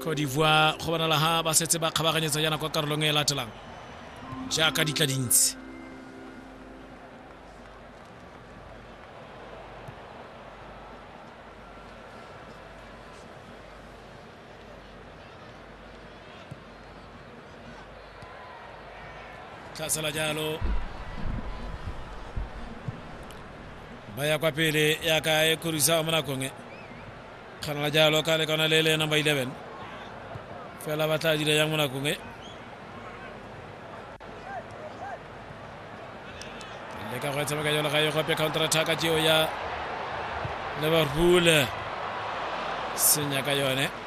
Cote d'Ivoire go bonala ha ba setse ba kgabaganyetsa yana kwa karolong e latelang jaaka di tla dintsi tlhasela jalo ba ya kwa pele yaka e khorisa mo nakong e Kana la jalo ka le kana le le number 11. Fela ba tla dira yang mo nakong e. Le ka go e tshameka jalo ga e gope counter attack a jeo ya Liverpool. Senya ka yone.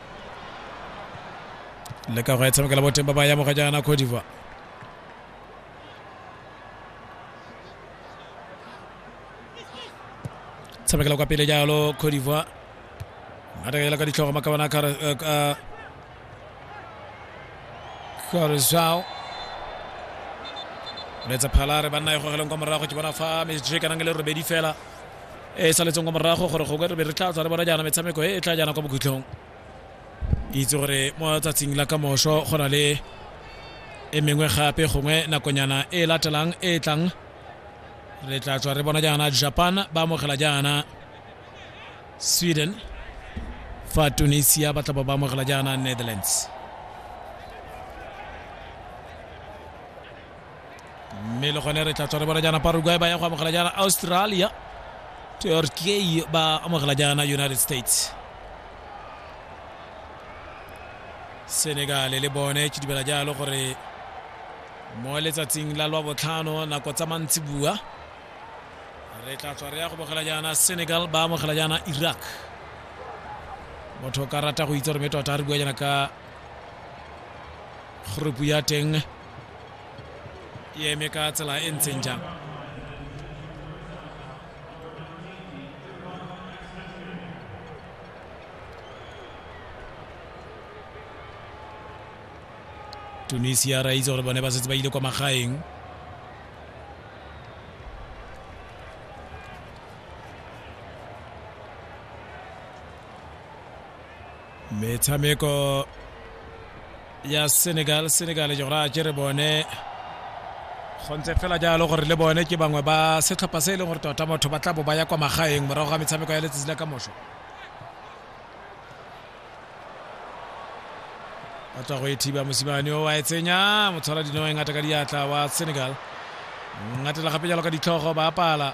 le ka go e tshamekela boteng ba ba ya moga jaana cote divoire tshamekela kwa pele jalo cote divoire matakela ka ditlhogo maka bona karisao letsa phalare banna e gogeleng kwa morago ke bona fa mejeke nang le robedi fela e saletseng kwa morago gore gongwe re be re tla tswa re bona jaana metshameko e e tla jaana kwa bokhutlhong ke itse gore mo tsatsing la kamoso go na le e mengwe gape gongwe nakonyana e e latelang e e tlang re tla tswa re bona jaana japan ba amogela jaana sweden fa tunisia ba tla ba ba amogela jaana netherlands mme le gone re tla tswa re bona jaana paraguay ba ya go amogela jaana australia turkey ba amogela jaana united states senegal le bone ke dumela jalo gore mo letsatsing la lwa botlhano nako tsa mantsi bua re tla tswa re ya go bogela jaana senegal ba amogela jaana iraq motho o ka rata go itse gore me tota re bua jaana ka group ya teng e eme ka tsela e ntseng jang tunisia ra itse gore bone ba setse ba ile kwa magaeng metshameko ya senegal senegal jora a kere bone go ntse fela jalo gore le bone ke bangwe ba setlhopha se e leng gore tota motho ba tla bo ba ya kwa magaeng morago ga metshameko ya letsatsi la ka moso ba tswa go e thiba mosimane o wa e tsenya motshwara dino e ngata ka diatla wa senegal ngatela gape jalo ka ditlhogo ba apala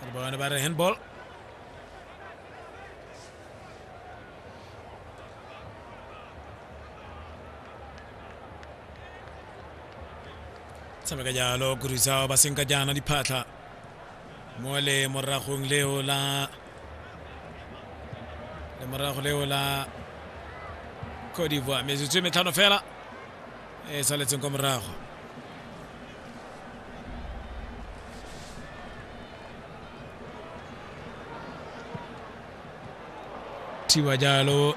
Ano ba, ano ba, handball? tshameka jalo kurisao ba senka jaana diphatlha mo le moragong leo la le morago leo la cote d'ivoire metsotso e metlhano fela e saletseng kwa morago thiwa jalo